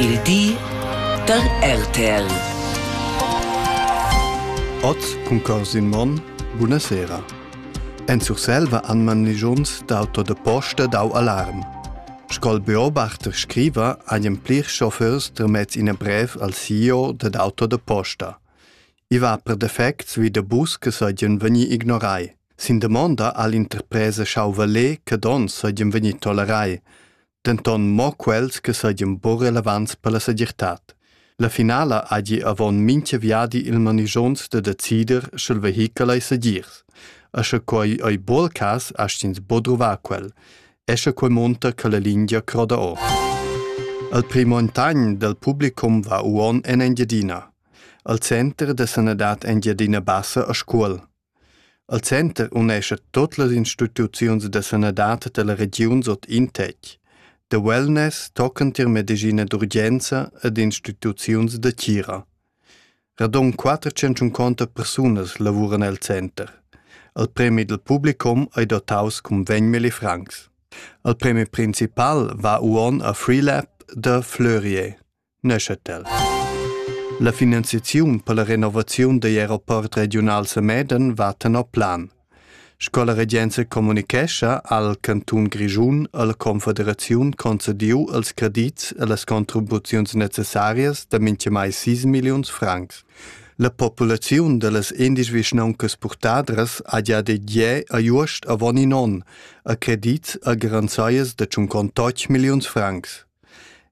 Il di da RTL. Ot cun Corsin Monn, buna sera. En Surselva anman ligiuns d'auto de posta dau alarm. Sco'l beobachter scriva agli plir chauffeurs termez ina brev al CEO dad auto de posta. I va per defects wie de bus che soglien vegni ignorai. Sin demonda all'interpresa schau valer che don soglien vegni tolerai. denton mo quels che seigien buc relevants per la segirtad. La finala hagi avon mincha viadi il manigions da decider sch'el vehichel ei segirs. E sche quei ei buc cas, astgins bodruvar quel. E sche quei monta che la lingia croda or. Al primontagn del publicum va uon en Engiadina. Al center de sanadad Engiadina Bassa a Scuol. Al center unescha tot las instituziuns da sanadad dalla regiun sot in tetg. Da wellness tocan tier medischina d'urgenza ed instituziuns da tgira. Radon 450 persunas lavuran el center. Al premi dal publicum ei dotaus cun 20 milli francs. Al premi principal va uonn a Freelab da Fleurier. Neuchâtel. La finanziaziun per la renovaziun degl aeroport regional Semeden va tenor plan. Sco la regenza comunicescha al Canton Grischun e la Confederaziun concediu els credits e las contribuziuns necessarias da minchamai 6 milliuns francs. La populaziun dellas indies vischnauncas purtadras ha già de gie a Juost avon in on a credits a garanzaias de 58 milliuns francs.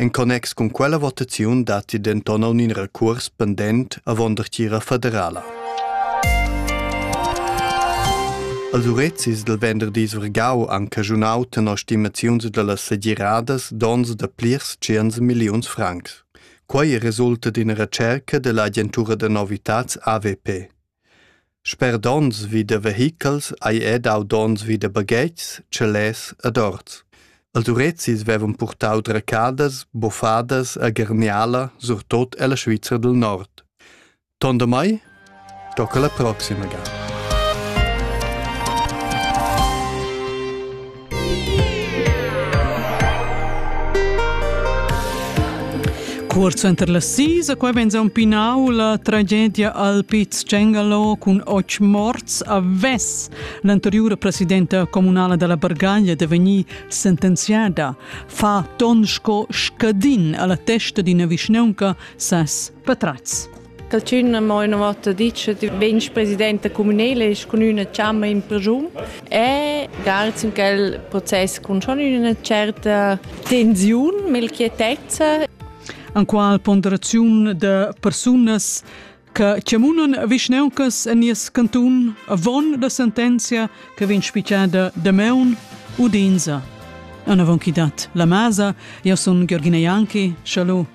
En connex cun quella votaziun datti denton aunc in recuors pendent avon dertgira federala. Als urezis del venderdi surgau han caschunau tenor stimaziuns dallas segiradas dons da plirs tschient milliuns francs. Quei resulta d'ina recerca dell'agentura da novitats AVP. Sper donns vi da vehichels ei era dau donns vi da baghetgs, chalets ed orts. Els urezis vevan purtau dracadas, buffadas e garniala, surtut ella Svizra dil Nord. Ton damai, tocca la proxima ga. Cuort suenter las sis a quai venza un pinau la tragedia al Piz Cengalo cun och morts a Ves. L'anteriura presidenta comunala della Bargaglia deveni sentenziada. Fa ton sco scadin alla testa d'ina vischneunca ses patrats. Dal tschun ha mo ina vota ditg che vegn presidenta communala e cun üna chamma in persun. E grazie in quel process con schon üna certa tensiun, melchietezza. An qual ponderaziun de persunas che cemunan vischneuncas en nies cantun avon la sentenzia che vegn spicciada de meun u d'insa. An avon chi dat la masa, io sun Georgina Janki, schalu.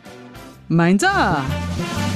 Meinsa!